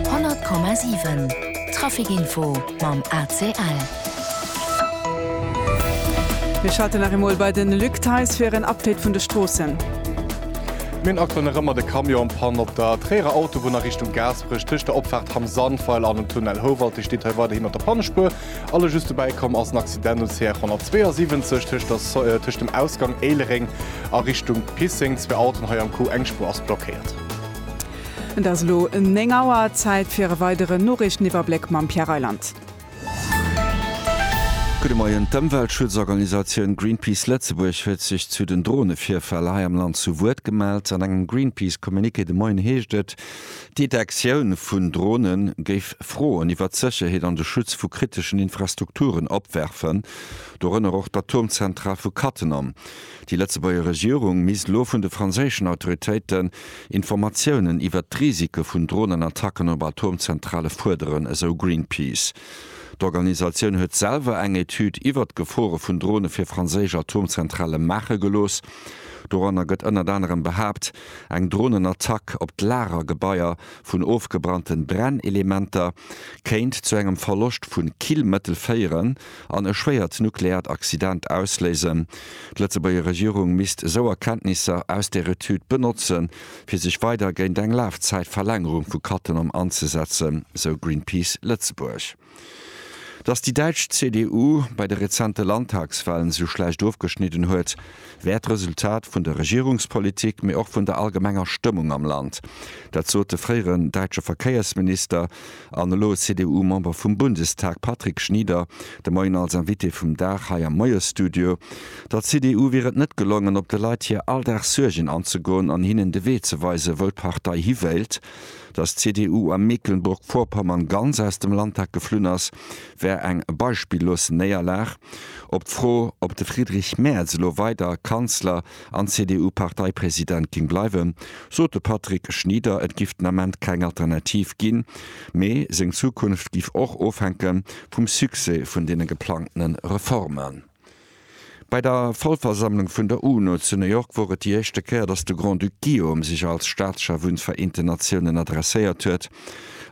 100,7 Traficinfo mam ACL. Mir schalten nach emol bei den Luc Theis fir en Update vun de Stroossen. Mir hunn aktuell nach ëmmer de Camion en Panne op der Tréierer Autobunn a Richtung Gaasperech. Tëscht der Opfaart Hamm Sandweiler an dem Tunnel Houwald-Dech steet hei weiderhin mat der Pannespuer. A lo just dobäi komm ass en Accident um CR 172 tëscht der Soy tëscht dem Ausgang Éilereng a Richtung Pisseng. Zwee Autoen hei am Coup, eng Spuer ass blockéiert. Et ass elo 9 Auer, Zäit fir e weideren Noriichteniwwerbléck mam Pierre Reyland. Gudde Moien, D'Ëmweltschutzorganisatioun Greenpeace Lëtzebuerg huet sech zu den Dronevirfäll hei am Land zu Wuert gemellt. An engem Greenpeace-Communiqué de Moien heescht et, d'Detektioun vun Drone géif Froen iwwert d'Sécherheet an de Schutz vu kriteschen Infrastrukturen opwerfen, dorënner och d'Atomzentral vu Cattenom. Déi Lëtzebuerger Regierung misst lo vun de franséischen Autoritéiten Informatiounen iwwert d'Risike vun Dronenattacken op Atomzentrale fuerderen, esou Greenpeace. D'Organisatioun huet selwer eng Etüd iwwert d'Gefore vun Drone fir franséisch Atomzentrale maache gelooss. Doranner gëtt ënnert anerem behaapt, eng Dronenattack op d'Lagergebaier vun ofgebrannte Brennelementer kéint zu engem Verloscht vu Killmëttel féieren, an e schwéiert nukleärt Accident ausléisen. D'Lëtzebuerger Regierung misst esou Erkenntnisser aus der Etüd benotzen, fir sech weider géint eng Lafzäitverlängerung vu Cattenom anzesetzen, sou Greenpeace Lëtzebuerg. Datt déi däitsch CDU bei de rezente Landtagswalen esou schlecht ofgeschnidden huet, wär d'Resultat vun der Regierungspolitik, mee och vun der allgemenger Stëmmung am Land. Dat sot de fréieren däitsche Verkéiersminister an elo CDU-Member vum Bundestag Patrick Schnieder de Moien als Invité vum Dag hei am Moiesstudio. Der CDU wier et net gelongen, op de Leit hir Alldagssuergen anzegoen an hinnen de Wee ze weisen, wou d'Partei hi wéilt. Datt d'CDU a Mecklenburg-Vorpommern ganz aus dem Landtag geflunn ass, wär eng beispillos Néierlag. Op d'Fro, ob de Friedrich Merz elo weider Kanzler an CDU-Parteipresident géing bleiwen, sot de Patrick Schnieder, et giff den Ament keng Alternativ ginn, mee seng Zukunft giff och ofhänke vum Succès vun deene geplangte Reformen. Bei der Vollversammlung vun der UNO zu New York wor et déi éischte Kéier, datt de Grand-Duc Guillaume sech als Staatschef un d'Vereenten Natiounen adresséiert huet.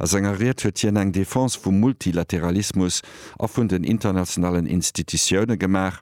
A senger Ried huet hien eng Defense vum Multilateralismus a vun den internationalen Institutioune gemaach.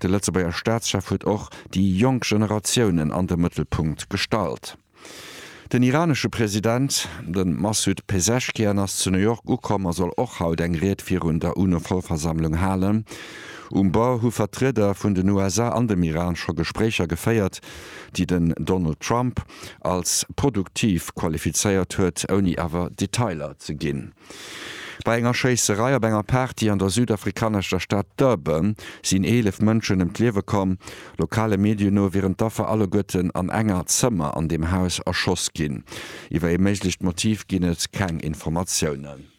De Lëtzebuerger Staatschef huet och déi jonk Generatiounen an de Mëttelpunkt gestallt. Den iranesche President, de Massoud Pezeshkian, ass zu New York ukomm a soll och haut eng Ried virun der UNO-Vollversammlung halen. Um Bord hu Vertrieder vun den USA an dem Iran scho Gespréicher geféiert, déi den Donald Trump, als produktiv qualifizéiert huet, ouni awer Detailer ze ginn. Bei enger Schéisserei op enger Party an der südafrikaneschter Stad Durban sinn 11 Mënschen ëm d'Liewe komm. Lokale Medien no wieren d'Affer alleguerten an enger Zëmmer an dem Haus erschoss ginn. Iwwer ee méiglecht Motiv ginn et keng Informatiounen.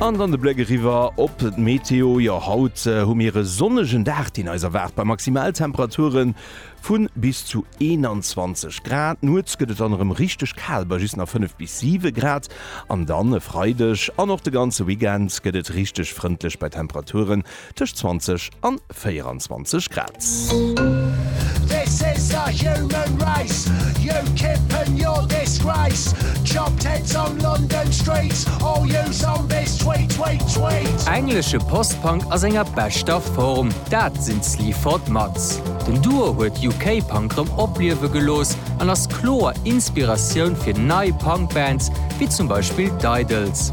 An dann de Bléck eriwwer op d'Meteo. Jo, haut hu mir e sonnegen Dag, deen eis erwaart bei Maximaltemperature vu bis zu 21 Grad. Nuets gëtt et dann erëm richteg kal bei just nach 5 bis 7 Grad. An dann e Freideg an och de ganze Weekend gëtt et richteg frëndlech bei Temperaturen, Tëscht 20 an 24 Grad. Englesche Post-Punk a senger beschter Form, dat sinn d'Sleaford Mods. Den Duo huet UK-Punk rëm opliewe gelooss an ass kloer Inspiratioun fir nei Punk-Bands, wéi zum Beispill d'Idles.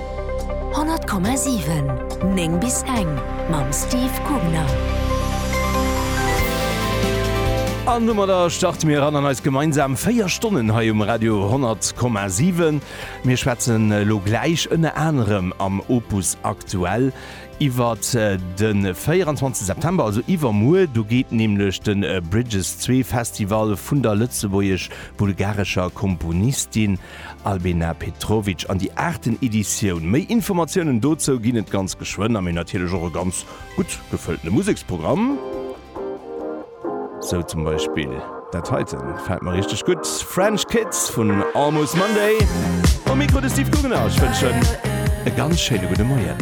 100,7, 9 bis eng mam Steve Kugner. An domadder starte mir eran an eis gemeinsam 4 Stonnen hei um Radio 100,7. Mir schwätzen elo gläich ënner anerem am Opus Aktuell iwwer de 24 September, also iwwermuer. Do geet nämlech de Bridges Zwee Festival vun der lëtzebuergesch-bulgarescher Komponistin Albena Petrovic an déi aachten Editioun. Méi Informatiounen dozou ginn et ganz geschwënn a mee natierlech och e ganz gutt gefëlltene Museksprogramm. Sou zum Beispill dat heiten, gefält mer richteg gutt, French Kids vun Almost Monday. Um Mikro de Steve Guggenau, ech wënschen e ganz schéine gudde Moien.